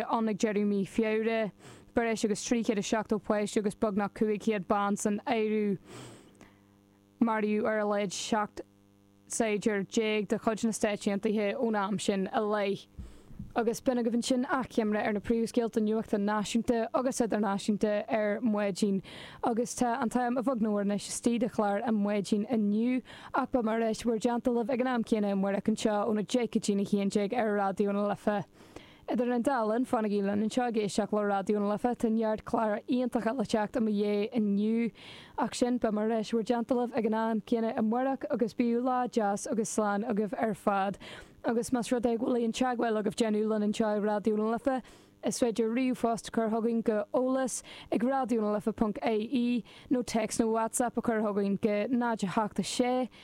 ann ag deireadh mhí Feabhra, breis agus 370 páiste agus beagnach 500 bean san áireamh. Maraíodh ar a laghad 17 saighdiúir de chuid na Stáit Aontaithe ón am sin i leith. Agus b'in agaibh ansin achoimre ar na príomhscéalta nuachta náisiúnta agus idirnáisiúnta ar maidin. Agus tá an t-am a bheag nó a mhór anois istigh de chlár ar maidin inniu, ach beidh mé ar ais in bhur dteannta libh ag an am céanna amárach anseo óna deich go dtí'n a haon déag ar Raidió na Life. Idir an dá linn, fanaigí linn anseo ag éisteacht le Raidió na Life, tá neart cláir iontacha le teacht i mo dhiaidh inniu. Ach sin, beidh mé ar ais in bhur dteannta libh ag an am céanna amáireach agus bíodh lá deas agus slán agaibh ar fad. Agus más rud é go bhfuil aon teagmháil agaibh déanamh linn anseo i Raidió na Life, is féidir ríomhphost a chur chugainn go eolas ag raidiónalife.ie nó téacs nó whatsapp a chur chugainn go 0, 8, 6,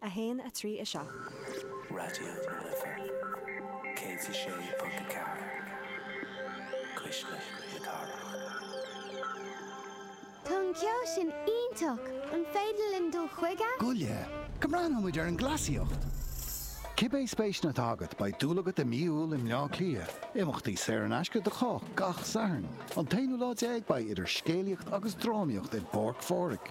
1, 3, 7. Raidió na Life 106.4, cuisle na cathrach. Tá an ceol sin iontach! An féidir linn dul chuige? Goile, go mbreathnóidh muid ar an gcleasaíocht! Cibé spéiseanna atá agat, beidh dúil agat i Mí Iúil i mBleá Cliath. Imeachtaí saor in aisce do chách gach Satharn. An t-aonú lá déag beidh idir scéalaíocht agus drámaíocht i bPáirc Phádraig.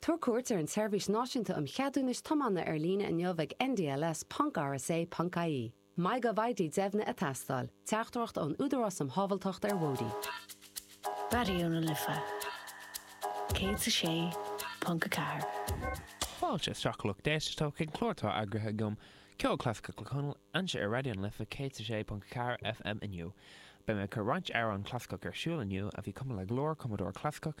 Tabhair cuairt ar an tSeirbhís Náisiúnta um Cheadúnais Tiomána ar líne inniu ag ndls ponc rsa ponc ie. MyGovID deimhnithe ag teastáil. Teachtaireacht ón Údarás um Shábháilteacht ar Bhóithrí. Raidió na Life 106.4. Fáilte isteach a lucht éisteachta chuig clár atá eagraithe agam, Ceol Clasaiceach le Conal, anseo ar Raidió na Life 106.4 FM inniu. Beidh mé ag cur roinnt amhrán clasaiceach ar siúl inniu a bhí cumtha le go leor cumadóir clasaiceach,